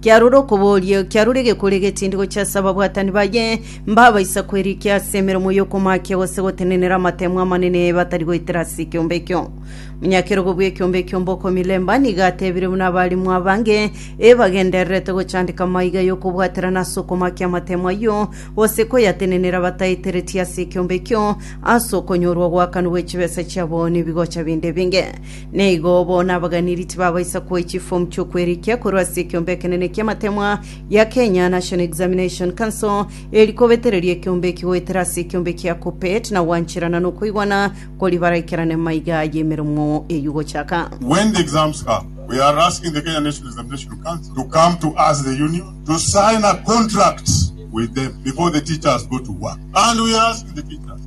Kiarore okoboria, kiarore egekori egetindi gochia ase ababwatani baye, mbabaisa kwerikia ase emeremo y'okomaakia gose gotenenera amatemo amanene batari goetera ase ekiombe ekio. Monyakerogo bw'ekiombe ekio Mbokomilemba nigo atebire buna abarimu abange ebagendererete gochandeka amaiga y'okobwaterana ase okomaakia amatemo ayio gose koyatenenera bataeteretie ase ekiombe ekio ase okonyorwa ogwakanwa gw'echibesa chiabo nebigocha binde ebinge. Na igo bono abaganiri tibabaisa koa chifomu chi'okwerikia korwa ase ekeombe ekenene ki'amatemwa gia Kenya National Examination Council, eri kobetereria ekeombe eki goetera ase ekeombe kia Kuppet na gwancherana nokoigwana kori baraikerane maiga y'emeromo eyio gochaka. When the exams come, we are asking the Kenya National Examination Council to come to us, the union, to sign a contract with them before the teachers go to work. And we ask the teachers.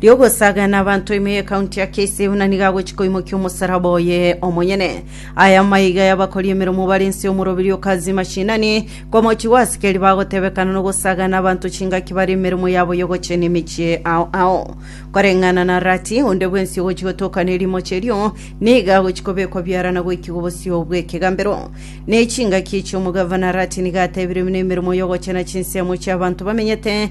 ri'ogosaga n'abanto ime y'ekaunti ya KCU na nigo agochi koimokia omosalaba oye omonyene. Aya amaiga y'abakori emeremo bare inse y'omoroberio o Kazi Mashinani, komochi gw'asikeri bagotebekana n'ogosaga n'abanto chingaki bare emeremo yabo y'ogochenia emechie ao ao. Koreng'ana na Rati, onde bwensi ogochi gotoka nerimochi erio, nigo agochi kobekwa biarana goikigwa obosio bw'ekegambero. Nechingaki echi omogavana Rati nigo atebire buna emeremo y'ogochena chinsemo chi'abanto bamenyete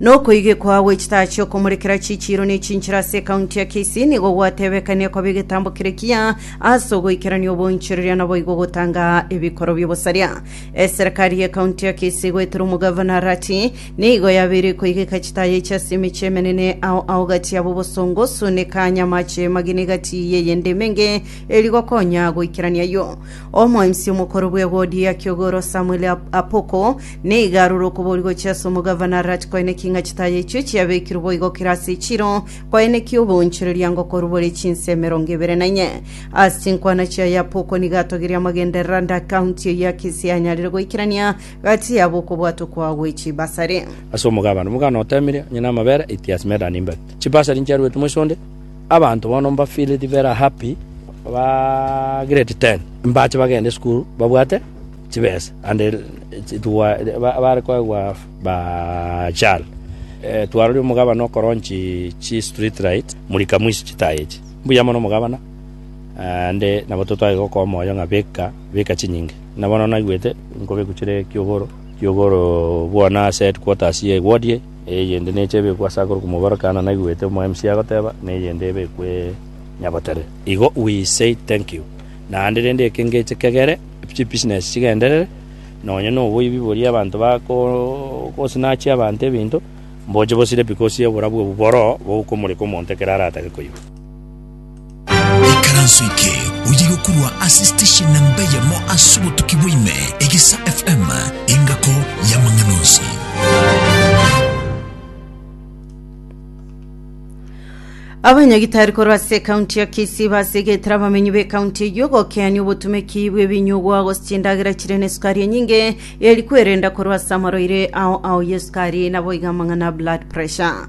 Nokoigekwa gwe chitaa chiokomorekera chichiiro ne chinchera ase ekaunti ya Kisii nigo gwatebekania koba egetambo kere kiya ase ogoikerania obonchoreria naboigo gotanga ebikoro biobosaria. Eserekari ye kaunti ya Kisii goetera omogavana Arati nigo yabeire koigeka chitaa yaiche ase emechie emenene ao ao gati yabo Bosongo, Sune, Kanya, Mache, Mageni gati yeyende emenge eri gokonya goikerania ayio. Omoensi omokoro bw'egodia ki'ogoro Samueli Apoko nigo arure okoboria gochia ase omogavana Arati koenekia ng'a chitaya echio chiabekirwe boigo kera ase echiro, koenekia oboonchoreria ngokorwe bore chinsa emerongo ebere na inye. Ase chinkwana chiaye Apoko nigo atogirie amagenderero ande akaunti eyio ya kesi yanyarire goikerania gati yabo okobwata okwao gwe chibasari. Ase omogabane, omogano oteemirie, onye namabere, eitie ase medani imbe chibasari nchiaruete moiso onde, Abanto bono mbafeeli rivera happy ba grade ten, mbache bagende esukuru babwate chibesa ande chitwa bare koegwa ba chal. Twarorire omogabana okoronchi chi street light murika mwisi chitayi echi. Mbuya mono omogabana ande nabo totware gokoa omoyo ng'a beka beka chinyinge. Na bono naigwete nkobekwa chire kiogoro kiogoro bwana ase headquarters ye ward eye. Eyende neche ebekwe ase akoro komobaro Kaana naigwete omoemsi agoteba, na eyende ebekwe Nyabotere. Igo we say thank you. Naende rende eke ngeche kegere, chibusiness chigenderere, nonye na oboibi boria abanto bagosnatch abanto ebinto, mboche bosire because y'oborabu obwo boroo bogokomoreka omonto ekero aratake koigwa. Ikaranso eke oye gokorwa ase station namba eyemo ase obotuki bwaime, Egesa FM, engako y'amang'ana onsi. Abanyagitari korwa ase ekaunti ya Kisii basegetera abamenyi b'ekaunti eyio gokeania obotumeki bw'ebinyugwa gose chindagera chire nesukari enyinge eri kwerenda korwa ase amarwaire ao ao y'esukari naboigo amang'ana blood pressure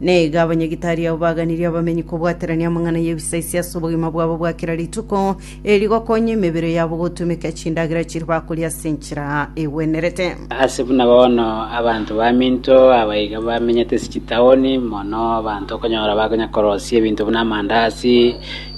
Naiga abanyagitari abo baganirie abamenyi kobwaterania amang'ana y'ebisaisio ase obogima bwabo bwa kera rituko, eri gokonya emebere yabo gotumeka chindagera chiria bakoria ase enchera egwenerete. Ase buna bono abanto baminto aba iga bamenyete ase chitaoni, mono abanto okonyora bakonya korosia ebinto buna amandazi,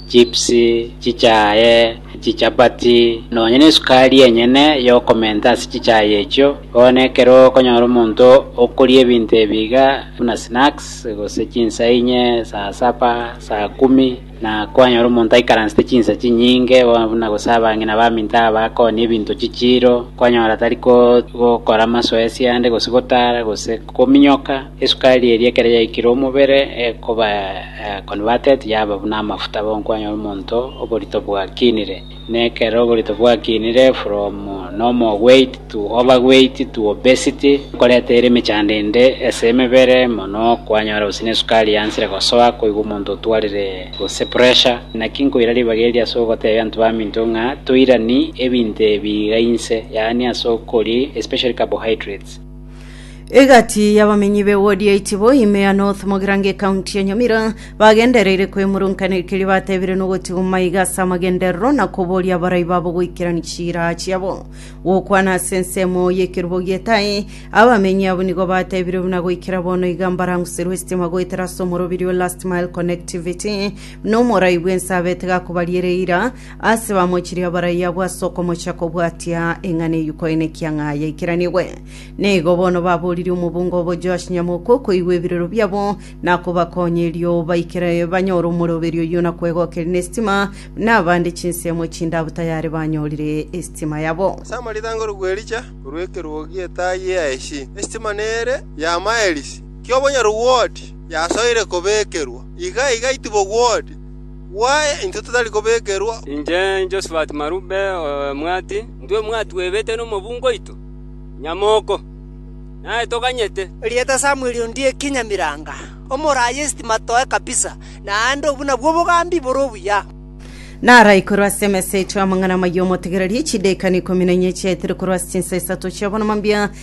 chips, chichae, Chichapati, nonya nesukari enyene y'okomenta ase chichae echio. Bono ekero okonyora omonto okoria ebinto ebi iga buna snacks, gose chinsa inye, saa saba, saa kumi, na kwanyora omonto aikaransete chinsa chinyinge, bono buna gose abang'ina baminto aba bakooni ebinto chichiiro, kwanyora tari gokora amasoesi ande, gose gotara, gose kominyoka. Esukari eria ekero yaikire omobere ekoba converted yaba buna amafuta bonkwanyoa omonto oborito bwakinire. Na ekero oborito bwakinire from normal weight to overweight to obesity ekoreta ere emechando ende ase emebere mono kwanyora gose nesukari yansire gosoa koigwa omonto otwarire gose pressure. Naki nkoira ribaga eri ase ogotebia abanto baminto ng'a toirani ebinto ebi iga inse yaani ase okori especially carbohydrates. Egati y'abamenyi b'ewodi ya Itibo, ime ya North Mogirango ekaunti ya Nyamira, bagendereire kwemurunkanera ekeria batebire nogotigwa maiga ase amagenderero na koboria abarai babo goikerania chiraa chiabo. Gokwana ase ensemo y'ekerubo gi'etaai, abamenyi abwo nigo batebire buna goikera bono iga mbaranguserwe estima goetera ase omorobirio, last mile connectivity, buna omorai bw'ense abete gakobaria ere eira, Ase bamochirie abaraiyo abwo ase okomocha kobwatia eng'ana eyio koenekia ng'a yaikiranigwe. Na igo bono baboririe omobunga obo Joash Nyamoku okoigwa ebirero biabo na kobakonya erio baikere banyore omoroberio oyio na kwegokeria nesitima, na abande chinsemo chindabu tayari banyorire esitima yabo. Ase amarita angoro bw'Elija korwa ekerogo etaa ye Yaeshi, esitima nere ya maelisi ki'obonyaru bw'Ooti yasoire kobekerwa, iga igaitibwa Ooti. Gwaye intwe totari kobekerwa. Inche Josphat Marube omwati, intwe mwatwebete nomobungo oito nyamoko, naye toganyete. Erieta Samweli ondieki Nyamiranga, omoraai esitima toe kabisa, naende obwo nabwo obogambi bore obuya. Narai korwa ase emesa yaito y'amang'ana amaya omotegererie, chidaakani ikomi na inye chiaetire korwa ase chinsa isato chi'abonoma mbia,